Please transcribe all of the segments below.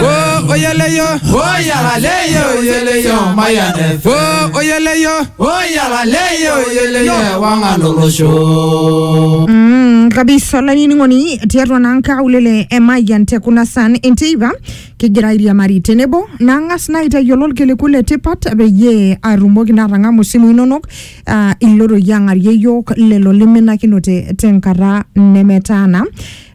o oyeleyo o yalaleyo oyeleyo mayanefe o oyeleyo o yalaleyo oyeleyo wangalolosho Mm, kabisa olainining'oni tiatua naa nkaulele e Mayian te kuna san enteipa kigira airiamari tenebo nang'as naa aitayiolo ilkiliku le tipat peyie atumoki naa atang'amu isimui inonok ah, iloroi ang'arie iyiook lelo liminakinote tenkata nemetaana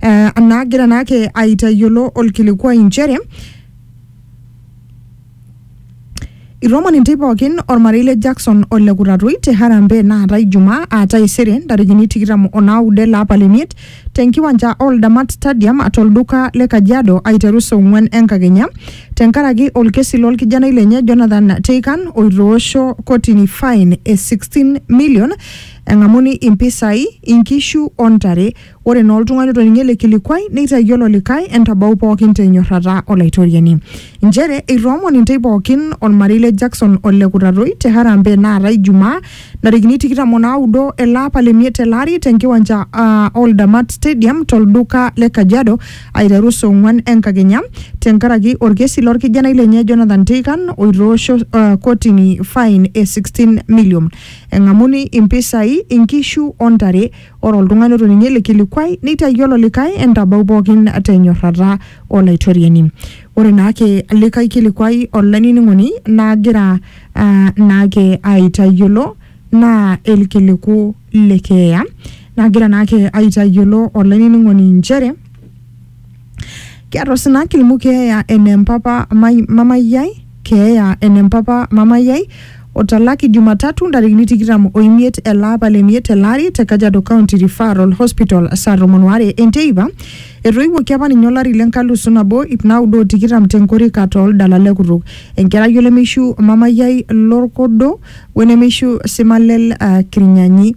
eh, naagira naake aitayiolo olkilikuai inchere Iromon intae pookin ormarei le Jackson o le Kutatoi te Harambee naata Ijumaa aa taisere ntarikini tikitam o naudo ele apa le miet tenkiwanja Oldamat Stadium tolduka le Kajiado aiteru saa ong'wan enkakenya tenkaraki olkesi lolkijanai lenye Jonathan Teikan oitoosho kotini fine e 16 million eng'amuni impisai, inkishu o ntare Ore naa oltung'ani otoning'o ele kilikuai neitayiolo likae entabau pookin te nyorrata o Laitoriani. Nchere eitoomon intei pookin olmarei le Jackson o le Kutatoi te harambee naatae Ijumaa ntarikini tikitam o naudo ele apa le miet tele ari te nkiwanja uh, o Ldamat Stadium to lduka le Kajiado aiteru saa ong'uan enkakenya te nkaraki olkesi lo lkijanai lenye Jonathan Teikan oitoosho uh, kotini fain e 16 milliom eng'amuni impisai, inkishu o ntare Ore oltung'ani otoning'o ele kilikuai neitayiolo likae entabau pookin te nyorrata o Laitoriani. Ore naake likae kilikuai olainining'oni naagira uh, naake aitayiolo naa ilkiliku le keeya. Naagira naake aitayiolo olainining'oni nchere Kiata osina kilimu keeya ene mpapa mai- mamai ai keeya ene mpapa mamai ai otalaki Jumatatu ntarikini tikitam oimiet ele apa le miet ele ari te Kajiado County Referral Hospital saa tomon waare enteipa. Etoiwuoki apa ninye olari le nkalusu nabo ip naudo o tikitam te nkorika too ldala le kutuk. Enkerai olemeishu mamai ai lorkodo wenemeishu Simalel uh, Kirnyanyi.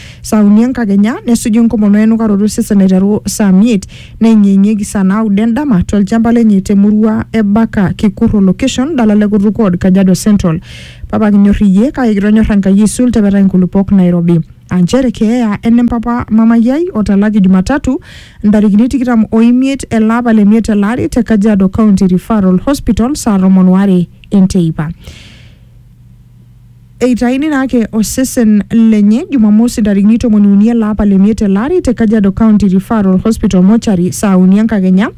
saa uni enkakenya nesuju enkomono enukaroto osesen aiteru saa miet neeng'ieng'ieki saa naudo endama tolchamba lenye temurua e Baka Kikurro location dala le Kutuk Ward Kajiado Central. Papa kinyor iyie kake kitonyor Enkai aisul tepetai nkulupuok Nairobi. Aa nchere keeya ene mpapa mamayi ai otalaki Jumatatu ntarikini tikitam o imiet ele apa le miet ele ari te Kajiado County Referral Hospital saa tomon o are enteipa. Eitaini naa ake osesen lenye Jumamosi ntarikini tomoni uni ele apa le miet ele ari te Kajiado County Referral Hospital Mortuary saa uni enkakenya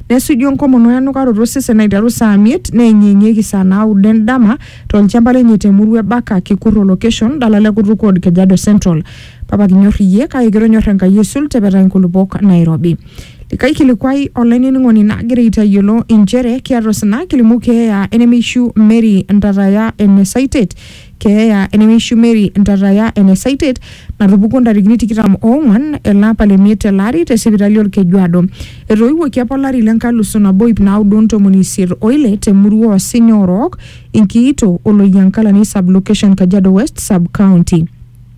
nesuju enkomono enukaroto osesen aiteru saa miet neyeng'iyeng'ieki saa naudo endama tolchamba lenye te murua e Baka Kikurro location dala le Kutuk Ward Kajiado Central. Papa kinyor iyie kake kitonyor Enkai aisul tepeta inkulupuok nairobi. Likae kilikuai olainining'oni nagira aitayiolo inchere kiata osina kilimu keeya enemeishu Mary Ntataya ene Saitet keeya enemeishu Mary Ntataya ene Saitet natupukuo ntarikini tikitam oong'wan ele apa le miet tele ari te sipitali Olkejuado. Etoiwuoki apa olari le nkalusu nabo iip naudo o ntomoni isiet o ile te murua oo Sinya Orook, Inkiito o Loyiankalani sub-location Kajiado West sub-county.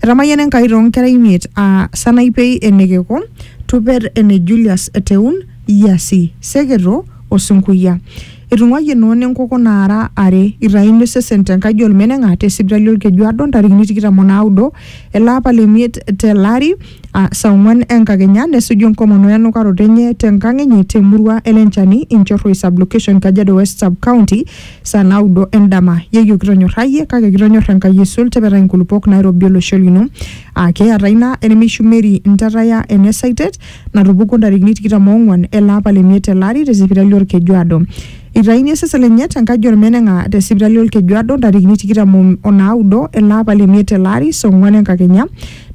Etamayiana Enkai too nkera imiet aa Sanaipei e Nekeko, Tuper ene Julius Eteun, Yiasi, Seketo o Sinkuya. Etung'uayie Noona enkoko naara are. Eitayuni osesen te nkaji olmeneng'a te sipitali Olkejuado ntarikini tikitam o naudo ele apa le miet te lari aa saa ong'uan enkakenya nesuju enkomono we nukaroto enye te nkang enye te murua e Lenchani, Inchorroi sub-location, Kajiado West sub-county. saa naudo endama yeyio kitonyorrayie kake kitonyor Enkai aisul tepetai inkulupuok nairobi olosho lino aa keeta ina enemishumeri ntataya ene saitet natupukuo ntarikini tikitam oong'uan ele apa le miet ele ari te sipitali olkejuado Eitayuni osesen lenye te nkaji olmeneng'a te sipitali olkejuado ntarikini tikitam o- o naudo ele apa le miet ele ari saa ong'uan enkakenya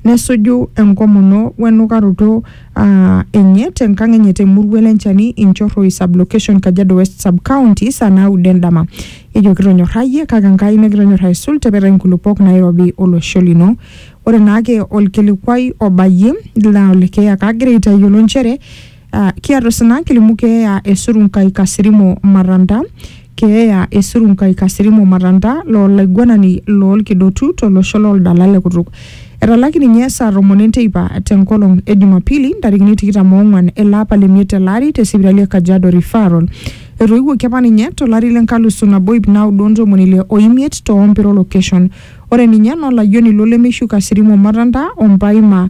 nesuju enkomono wenukaroto aa enye te nkang enye te murua ele Nchani Inchorroi sub location Kajiado West sub county saa naudo endama. Ejo kitonyorrayie kake Enkai nikitonyor aisul tepetai nkulupuok nairobi olosho lino. Ore naake olkilikuai obayie naa ole keeya kagira aitayiolo nchere aa kiata osina kilimu keeya esurunkai Kasirimo Maranda Keeya e Surunkai Kasirimo Matanta loo laiguanani loo lkidotu to losho loo ldala le kutuk. Etalaki ninye saa tomon e nteipa te nkolong e Jumapili ntarikini tikitam o nguan ele apa le miet tele ari te sipitali e Kajiado Referral. Etoiwuoki apa ninye to lari le nkalusu nabo iip naudo o ntomoni ile o imiet to Ompiro Location. Ore ninye nolayioni lo Lemeishu Kasirimo Matanta o Mpaima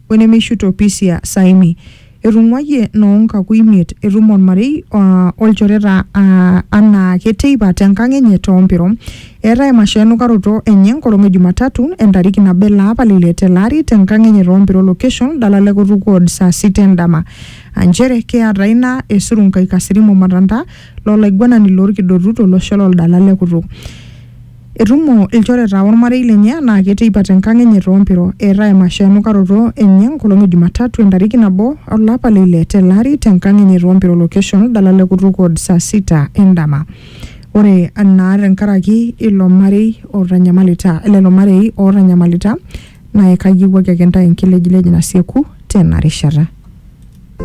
wenemeishu to Pisia Saimi. Etung'uayie noo nkaku imiet etum olmarei aa olchoreta aa anaake teipa te nkang enye too Mpiro. Eeta emasho enukaroto enye enkolong e Jumatatu entariki nabo ele apa le ile tele ari te nkang enye too Mpiro location Dala le Kutuk ward saa sita e ndama. Aa nchere keata ina esurunkai Kasirimo Matanta lo laiguanani loo lkidotu to losho lo Dala le Kutuk. Etumo ilchoreta olmarei lenye anaake teipa te nkang enye too Mpiro. Eeta emasho enukaroto enye enkolong e Jumatatu entariki nabo o lapa le ile tele ari te nkang enye too Mpiro location Oldala le Kutuk Ward saa sita e ndama. Ore naa te nkaraki ilo marei otanyamalita lelo marei ootanyamalita naa ekayiewuaki ake intae enkilejilej nasieku tena rishata.